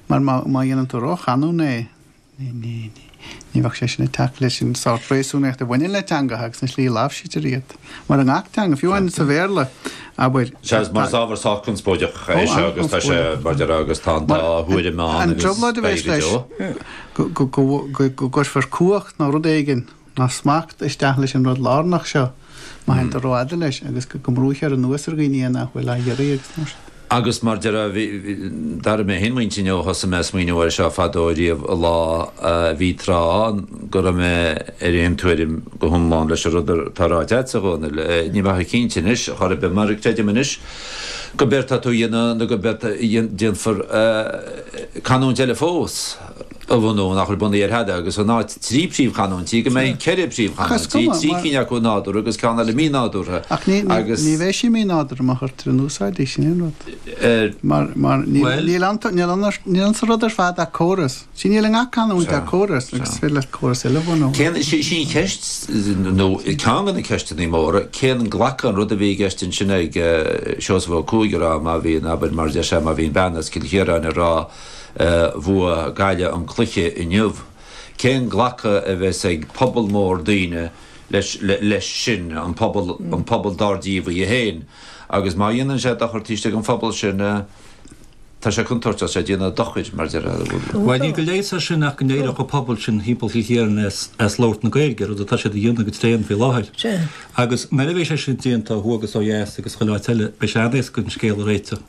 Mar má dhéanann tú róchanúnach é, ní bheadh sé sin ag teacht leis an sórt réasúnaíocht a bhaineann le teangacha agus an tslí a láimhsítear iad. Mar i ngach teanga, fiú amháin sa Bhéarla, abair, tá. Sea, mar is ábhar sách conspóideach é seo agus tá sé, mar deir, agus tá an dá thuairim ann agus beidh go deo. An trioblóid a bheidh leis go gcuirfear cumhacht nó rud éigin ná smacht isteach leis an rud lárnach seo má théann tú rófhada leis agus go mbrúithear anuas ar dhaoine é nach bhfuil á iarraidh agus mar sin. Agus mar deir d'athraigh mé féin m'intinn ó thosaigh mé ag smaoineamh air seo fadó riamh an lá, bhí tráth ann go raibh mé ar aon tuairim go hiomlán leis an rud atá ráite agat, a Dhónaill, ní bheinn chomh cinnte anois chor ar bith mar creidim anois gurb éard atá tú a dhéanamh nó gurb éard a déanfar canúint eile fós. a bhunú, nach bhfuil bunaithe ar thada agus in áit trí príomhchanúintí, go mbeidh ceithre príomhchanúintí, trí cinn acu nádúrtha agus ceann eile mínádúrtha, agus. Ní bheidh sí mínádúrtha, má chuirtear in úsáid í, sin é an rud. Mar níl insa rud ar fad ach córas. Sea, níl i ngach canúint ach córas agus is féidir leat córas eile a bhunú. Sin an cheist, nó ceann de na ceisteanna móra, cén glacadh an rud a bhí i gceist ansin ag Seosamh Ó Cuaig a rá má bhíonn abair, mar a deir sé, má bhíonn bean as Cill Chiaráin ag rá, Bhuaigh Gaillimh an cluiche inniu. Cén glacadh a bheidhs ag pobal mór daoine leis sin, an pobal, an pobal dár díobh í féin? Agus má dhéanann sé dochar taobh istigh den phobal sin, tá sé contúirteach, tá sé ag déanamh dochair mar deir. Bhuel níl de leigheas air sin ach go n-éireodh an pobal sin thimpeall Chill Chiaráin as labhairt na Gaeilge, rud atá siad a dhéanamh go tréan faoi láthair. Agus nuair a bheidh sé sin déanta ó thuaidh agus ó dheas agus chuile áit eile, beidh sé an-éasca an scéal a réiteach.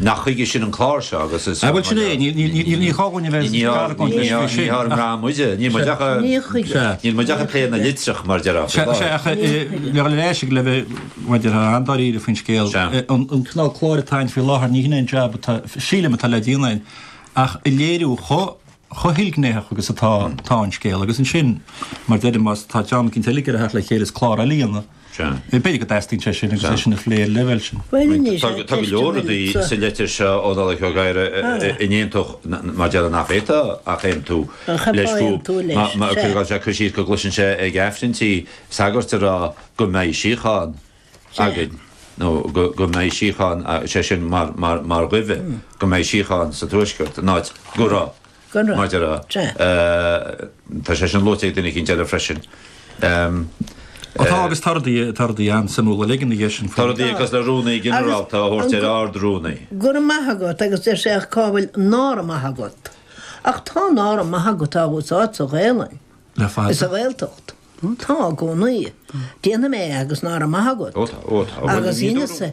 Nach chuige sin an clár seo agus is. Bhuel, sin é, ní gá dhúinn a bheith ag argóint leis faoi sin. Ní ár mbrá muide, níl muid ach ag. Ní chuige. Níl muid ach ag plé na litreach mar a déarfá. Sea, sea, ach le dhul ar ais ag le bheith, mar a déarfá, an-dáiríre faoin scéal. Sea. An cineál cláir atá ann faoi láthair, ní hin é an jab atá, sílim, atá le déanamh ann ach a léiriú chomh hilghnéitheach agus atá an scéal agus ansin, mar a deirim, má tá dream éicint eile ag iarraidh a theacht le chéile is clár eile a dhéanamh. B'fhéidir go dteastaíonn sé sin agus é sin ag an leibhéal sin. Tá go leor rudaí sa litir seo ó Nollaig Ó Gadhra a ndéanfadh mar a déarfá nach bhféadfá ach aontú leis go bhfuil sé ag cur síos go gcloiseann sé ag Aifrinntí sagairt ag rá go mbeidh síocháin againn nó go mbeidh síocháin, sé sin mar ghuí, go mbeidh síocháin sa Tuaisceart, in áit go raibh. Go raibh maith agat. Tá sé sin luaite ag duine éicint eile freisin. Tá agus tá rudaí, tá rudaí an-suimiúla uilig ina dhiaidh sin. Tá rudaí cosúil le rúnaí ginearálta a thabhairt ar ard-rúnaí. Go raibh maith agat agus deir sé ach cá bhfuil nára maith agat. Ach tá nára maith agat á úsáid sa Ghaelainn. Le fada. Is sa Ghaeltacht. Tá i gcónaí. Déanfaidh mé é agus nára maith agat. Ó tá, ó tá. Agus inse.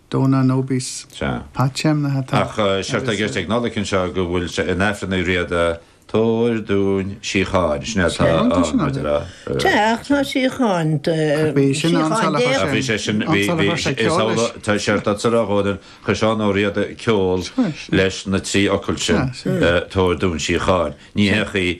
Dónal Noboes, Sea. Pat Shanahan atá Ach séard atá i gceist ag Nollaig anseo go bhfuil sé in Aifreann Uí Riada, Tabhair dúinn síocháin, sin é atá ann, muid a rá. Sea, ach tá síocháin, síocháin Dé ann. Bhí sé sin, bhí, bhí, is amhlaidh, tá séard atá sa rud atá ann, chuir Seán Ó Riada ceol leis na trí fhocal sin, Tabhair dúinn síocháin. Ní h-é chaoi.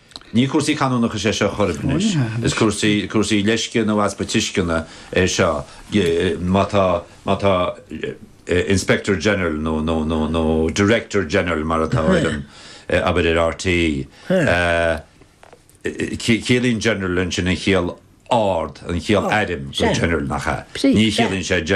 Ní cúrsaí canúnachais é seo chor ar bith anois, is cúrsaí, cúrsaí leisce nó easpa tuisceana é seo. Má tá, má tá Inspector General nó, nó, nó, nó Director General mar atá ar an, abair ar RTÉ, ciallaíonn General ansin an chiall ard, an chiall airm do General nach ea? Ní chiallaíonn sé.